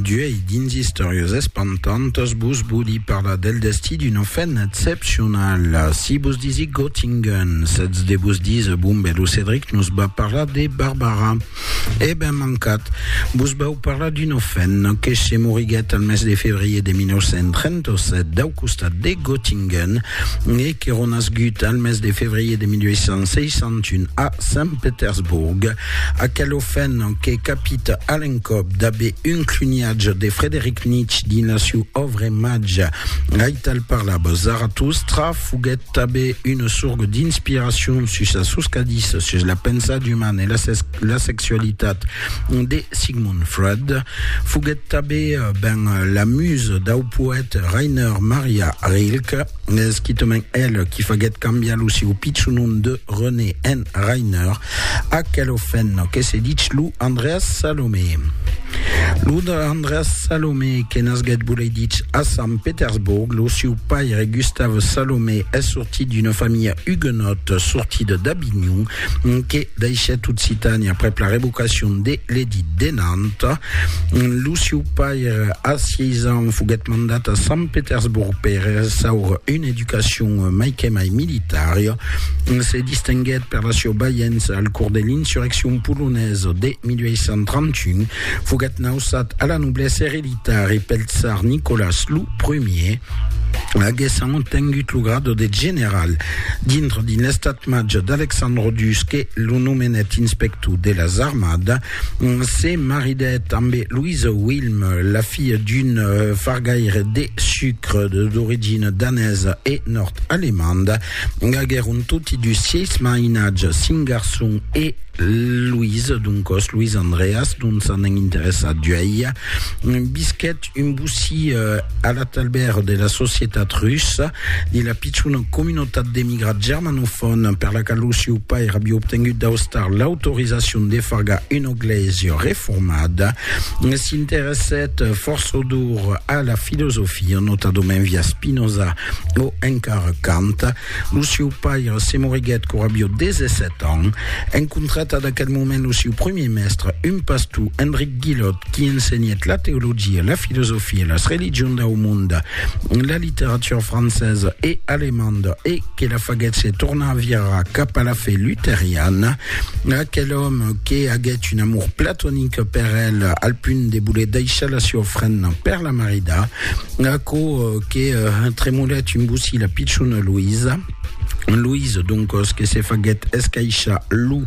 D'uèi dins Istòrias espantantas vos vòli parlar del destí d'una femna excepcionala. Si vos disic Göttingen, sètz de vos díser, bon ben, lo Cedric nos va parlar de Barbara. E ben mancat, vos vau parlar d'una femna que se moriguèt al mes de febrier de 1937 dau costat de Göttingen e que ronasgut al mes de febrier de 1861 a Sant Petersborg. Aquel ofèn que capit a l'encòp d'aver un cluniatge de Frederic Nietzsche dins la siu òvre màger Aital parlava Zaratustra foguèt tanben una sorga d'inspiracion sus las soscadís sus la pensat umana e la, la sexualitat de Sigmund Freud. Foguèt tanben ben la musa dau poète Rainer Maria Rilke, esquitament el qui faguèt cambiar lo siu pichonon de René en Rainer, Aquel ofèn que se dich lo Andreas Salomé. Lo Andreas Salomé que nasguèt volei dich a Sant Petersborg, lo siu paire Gustav Salomé es sortit d'una familha huguenòt sortida d'Avinhon que daishèt Occitània aprèp la revocacion de l'Edit de Nantes. Lo siu paire a 6 ans foguèt mandat a Sant Petersborg per ressaure una L'educacion mai que mai militària se distinguèt per la sieu baiença al cors de l'insurreccion polonesa de 1831. Foguèt nausat a la noblesa ereditari pel tsar Nicolas lo Primier, aguessant obtengut lo grado de general. Dintre dins l'estat-màger d'Alexandre Dusc que lo nomenèt inspector de las armadas, Se maridèt ambe Louise Wilm, la filha d'un fargaire de sucre d'origina danesa e nòrd-alemanda. Aguèron toti dus sièis mainatges, cinc garçons e Louise, doncòs Louis Andreas, dont s'anèn interessat d'uèi. Visquèt Un bocí a la talbèr de la societat russa de la pichona comunotat d'emigrats germanofòn per la qual lo sieu pair aviá obtengut d'Austar l'autorizacion de fargar una glèisia reformada, s'interessèt forçodor a la filosofia, notadament via Spinoza o encara Kant. Lo sieu paire, Simon Riguet, qu'aurà vieu 17 ans, encontrat ad aquel moment lo sieu premier mèstre, un pastor, Enric Guillot, qui ensenhèt la teologia, la filosofia, las religions dau monde, la literatura francesa e alemanda e que la faguèt se tornar a virar cap a la fe luteriana. Aquel òme que aguèt un amor platonic per el al punt de voler daishar la sieu ofrenda per la marida. Aquò que tremolèt un bocí la pichona Loïsa, Loïsa, doncòs, que se faguèt escaishar lo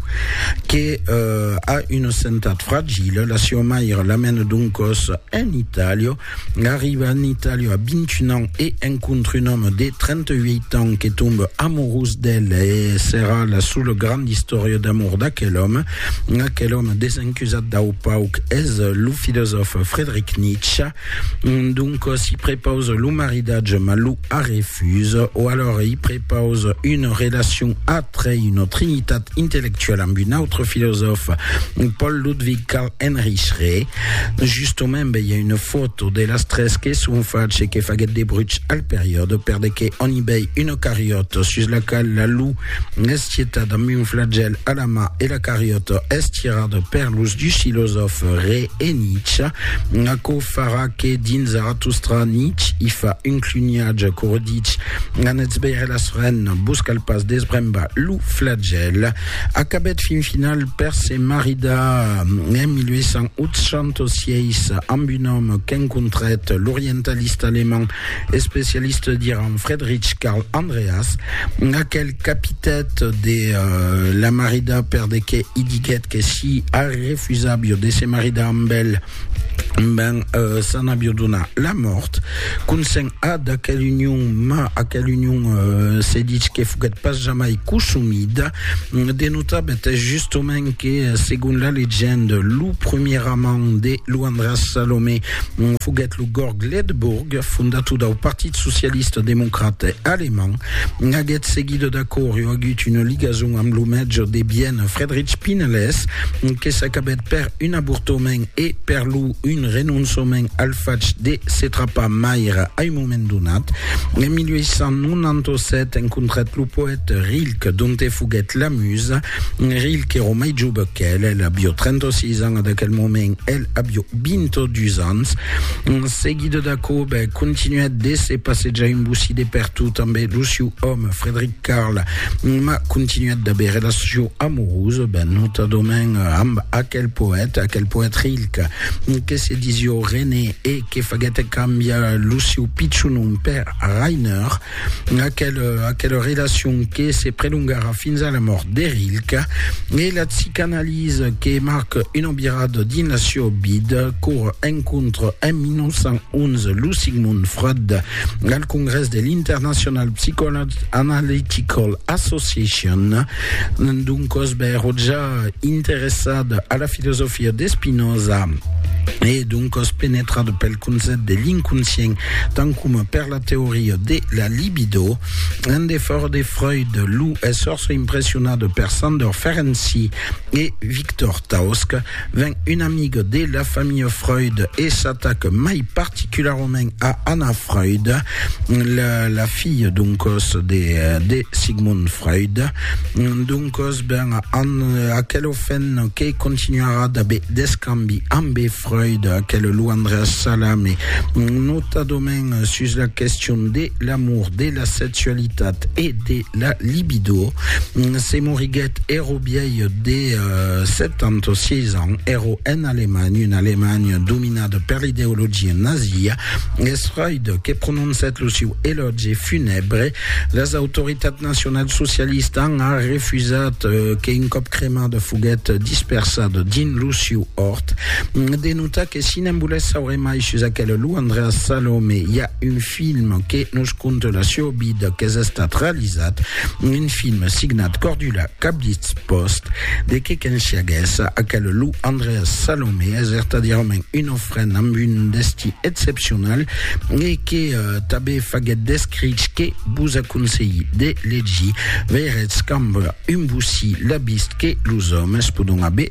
que a una santat fragila, la siua maire la mena doncòs en Itàlia, arriba en Itàlia a 21 ans e encontre un òme de 38 ans que tombe amorós d'ela e serà la sola granda istòria d'amor d'aquel òme. Aquel òme desencusat dau pauc es lo filosòf Friedrich Nietzsche. Donc si prepausa lo maridatge mas lo arrefusa o alora i prepausa una relacion atre una trinitat intellectuala amb un autre filosòf Paul Ludwig Karl Heinrich Re justament ben i a una foto de las tres que son fach e que faguèt de bruch al periòde per de que on i vei una cariòta sus la qual la lu es gietat amb un flagèl a la mà e la cariòta es tirada per los dus filosòfs Re E Nietzsche, aquò farà que dins Zaratostra Nietzsche i fa un cluniatge qu'aurà dich, Anètz veire las renes, vos cal pas desbrembar lo flagèl. Acabèt fin final per se maridar en 1886 amb un òme qu'encontrèt, l'orientalista alemand especialista d'Iran Friedrich Karl Andreas, aquel Capitat de la maridar per de qué i diguèt que si Harry refusàvio de se maridar amb el, ben s'an avio donar la mòrt. Consent a d'aquel union, ma aquel union se ditz que foguèt pas jamai cosumida. De notar betès justement que segon la legende lo premier amant de Luandras Salomé foguèt Lo Gorg Ledebourg, fondator dau Partit Socialista Democrate Alemand, aguèt seguit d'acòr e agut una ligason amb lo mètge de Viena Friedrich Pinelès, que s'acabèt per un avortament e per lo un renonçament al fach de se trapar maire a un moment donat. En 1897 encontrèt lo poète Rilke, donte foguèt la musa, Rilh qu'èro mai jove qu'el, el avió 36 ans a d'aquel moment, el avió 22 ans. Seguida d'aquò, bè, continuèt de se passejar un bocí de pertot amb lo siu òme, Frederic Carl, ma continuèt d'aver relacion amorosa, bè, notadament amb aquel poète, aquel poète Rilh, que se disió René e que faguèt cambiar lo siu pichon nom per Rainer. Aquela, aquela relacion que se prelongarà fins a la mòrt de Rilke e la psicanalisa que marca una virada dins la seu vida qu'ora encontra en 1911 lo Sigmund Freud al congrès de l'International Psychoanalytical Association. Doncòs, bèro ja interessada a la filosofia de Spinoza e doncòs penetrada pel concèpt de l'inconscient tant coma per la Teoria de la libido, un defòrt de Freud, lo esfòrç impressionat per Sandor Ferenczi e Victor Tausk, ven un amic de la familha Freud e s'atac mai particularament a Anna Freud, la filha doncòs de Sigmund Freud. Doncòs, ben, aquel ofènt que continuarà d'aver d'escambi ambe Freud, aquel Luandras Salame, notadament sus la question de l'amour, de la sexualitat e de la libido, se moriguèt ero biei de 76 euh, ans, ero en Alemanha, una Alemanha dominada per l'ideologia nazia, es Freud que prononcèt lo siu elògi funèbre, las autoritats nacional socialista an refusat euh, que un còp cremada foguèt dispersada dins lo siu òrt, De notar que si n'en volètz saure mai sus aquel Lou Andreas Salome, i a un film que nos conte la sieu vida qu'es estat realizat, un film signat Cordula Cablitz Post, de que qu'ensiaguèsse aquel Lou Andreas Salome es vertadièrament un ofrent amb un destí excepcional e que tanben faguèt d'escrich que vos aconselhi de legir. Veiretz qu'amb un bocí l'abist que los òmes podon aver